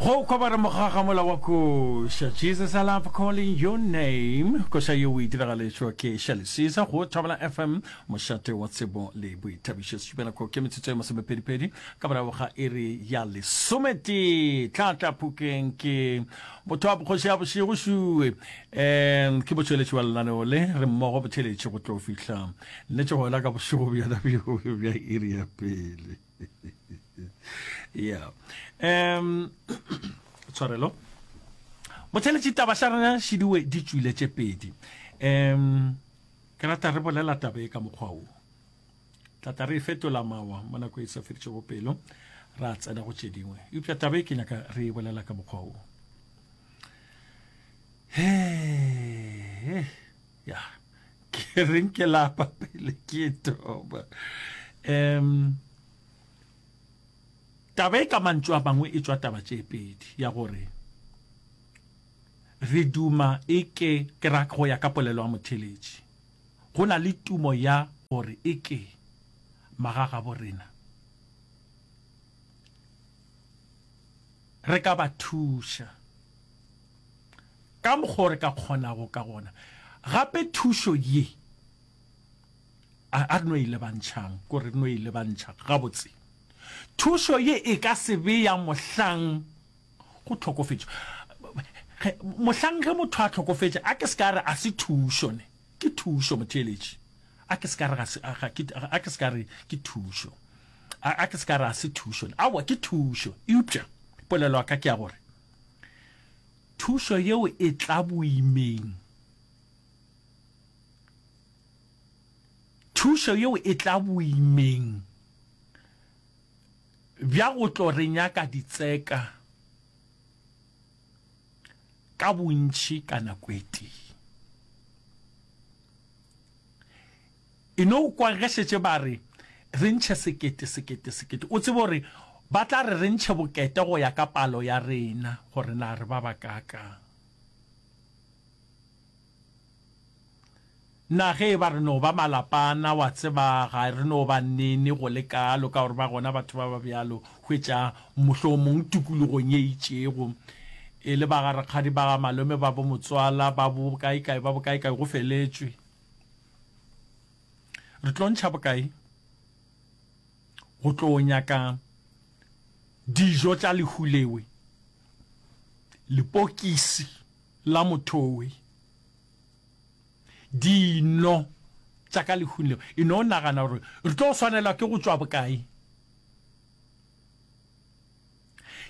go kobara mogaga mola wa koša jesus i love calling your name koša yeo o e diragaletšwa ke šalisisa go thabela fm mošate wa tsebo le boithabišo setšupenako ke metsotso ya masomepedipedi ka morago ga iri ya lesometee tlatla phukeng ke motho wa bogoši ya bošego šue um ke botšweletši wa lenaneo le re mmogo botheletše go tlo fihla nnetšego la ka bošego bjona bja iri ya pele yeah um tshwarelo botheletše taba xa rena šidiwe di tswile tše pedi um ke rata re bolela taba e ka mokgwa o tlata re e fetola mawa mo nako e sa feditšego pelo ra tsena go tše dingwe eupša taba e ke nyaka re e bolela ka mokgwa o he ya ke reng ke lapa pele ke toba um taba e ka mantšu a mangwe e tšwa taba tše pedi ya gore re duma e ke ke ra go ya ka polelo ya motheletši go na le tumo ya gore e ke magaga bo rena re ka ba thuša ka mokgwa re ka kgonago ka gona. Gape thušo ye a re no e lebantšhang, ko re no e lebantšha gabotse. Thušo ye e ka se be ya mohlang go tlhokofetšwa. Mohlang ge motho a tlhokofetše, a ke se ka re a se thušo ne, ke thušo motheeletši. A ke se ka re ga se, a ke se ka re ke thušo. A ke se ka re a se thušo ne, aowa ke thušo. Eupša polelo ya ka ke ya gore, Thušo yeo e tla boimeng. Thušo yeo e tla boimeng bja go tlo re nyaka ditseka ka bontši ka nako e tee. E no kwa ge šetše ba re, Re ntšhe sekete, sekete, sekete. O tsebe o re, Ba tla re re ntšhe bokete go ya ka palo ya rena, gore na re ba bakaakang. Na ge e ba re no ba malapana, wa tseba, ga re no ba nene go le kaalo, ka gore ba gona batho ba ba bjalo. Hwetša, mohlomong tikologong ye itšego, e le ba ga rakgadi, ba ga malome, ba bomotswala, ba bokaekae, ba bokaekae, go feletšwe. re tlo ntšha bokae go tlo nyaka dijo tša lehulewe lepokisi la mothowe dino tša ka lehulewe e no nagana gore re tlo swanelwa ke go tšwa bokae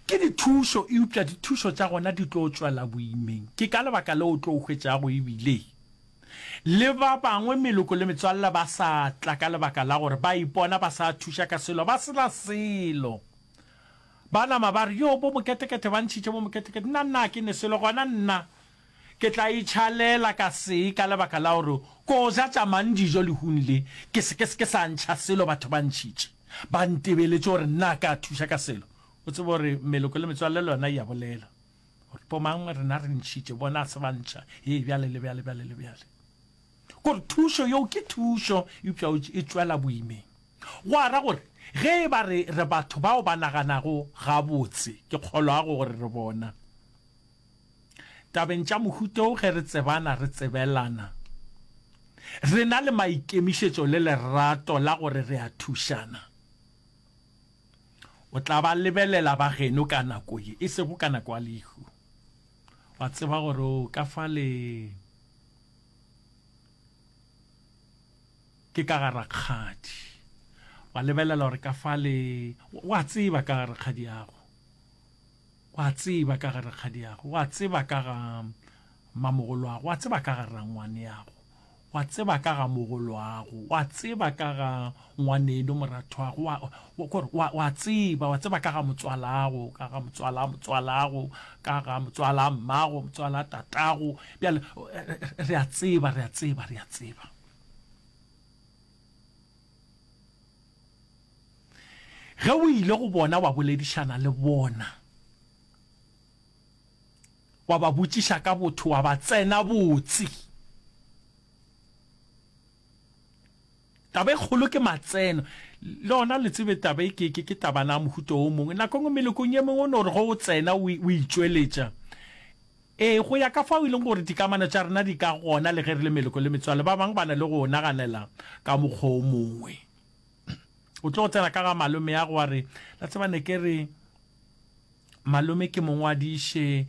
Ke dithušo, eupša dithušo tša gona di tlo tšwela boimeng. Ke ka lebaka leo o tlo hwetšago e bile le ba bangwe, meloko le metswalle, ba sa tla ka lebaka la gore ba ipona ba sa thuša ka selo, ba se na selo. Ba nama ba re, Yoo, bo-moketekete ba ntšhitše bo-moketekete. Nna, nna ga ke ne selo, gona nna. Ke tla itšhalela ka se ka lebaka la gore ko ja tša mang dijo lehung le, ke se ke se ke sa ntšha selo batho ba ntšhitše, ba ntebeletše gore nna ka thuša ka selo. O tsebe gore meloko le metswalle le yona e a bolela gore bomang rena re ntšhitše, bona a se ba ntšha, hee, bjale le bjale, bjale le bjale. Ke gore thušo yeo ke thušo, eupša e tšwela boimeng. Gwa ra gore ge e ba re re batho bao ba naganago gabotse, ke kgolwago gore re bona. Tabeng tša mohuta wo ge re tsebana re tsebelana, re na le maikemišetšo le lerato la gore re a thušana. O tla ba lebelela ba geno ka nako ye, e sego ka nako ya lehu. Wa tseba gore o ka fa le ke ka ga rakgadi, wa lebelela gore ka fa le wa tseba ka ga rakgadi yago. O a tseba ka ga rakgadiago, o a tseba ka ga mmamogolwago, o a tseba ka ga rrangwaneago, o a tseba ka ga mogolwago, o a tseba ka ga ngwaneno morathwago, o a, ko re, o a, o a tseba, o a tseba ka ga motswalago, ka ga motswalaa motswalago, ka ga motswalaa mmago, motswalaa tatago, bjale, re a tseba, re a tseba, re a tseba. Ge o ile go bona wa boledišana le bona, wa ba botšiša ka botho, wa ba tsena botse. Taba e kgolo ke matseno. Le gona le tsebe taba e ke, ke, ke tabana ya mohuta o mongwe. Nako e nngwe melokong e mengwe o no re ge o tsena o, o itšweletša, Ee, go ya ka fao e lego gore dikamano tša rena di ka gona le ge re le meloko le metswalle, ba bangwe ba na le go naganela ka mokgwa o mongwe. O tlogo tsena ka ga malomeago wa re, La tseba ne ke re malome ke mo ngwadiše.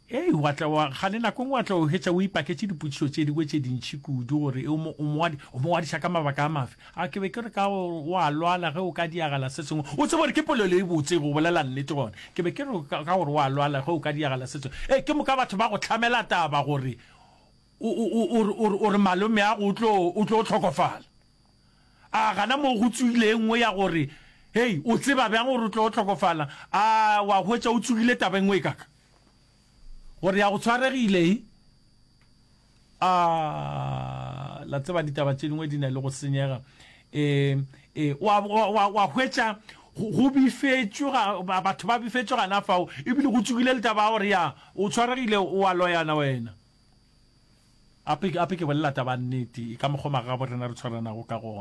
Hei, wa tla wa, ga le nako e nngwe wa tla o hwetša o ipaketše dipotšišo tše dingwe tše dintši kudu gore o mo, o mo, o mo ngwadiša ka mabaka a mafe. A ke be ke re ka go, o a lwala ge o ka diragala se sengwe. O tseba gore ke polelo e botse, go bolela nnete gona. Ke be ke re ka, ka gore o a lwala ge o ka diragala se sengwe. Ee, ke moka batho ba go hlamela taba gore o, o, o, o re, o re, o re malomeago o tlo, o tlo hlokofala. A gana moo go tsogile e nngwe ya gore, Hei, o tseba bjang gore o tlo hlokofala? A wa hwetša o tsogile taba e nngwe e kaka? Gore ya go tshwaregile e? A la tseba ditaba tše dingwe di na le go senyega e e wa wa wa hwetša go bifetšwe ga batho ba bifetšwe gana fao ebile go tsukile le taba gore ya o tshwaregile o wa loyana wena ape ape ke bolela taba nnete ka mokgwa maga bo rena re tshwaranago ka gona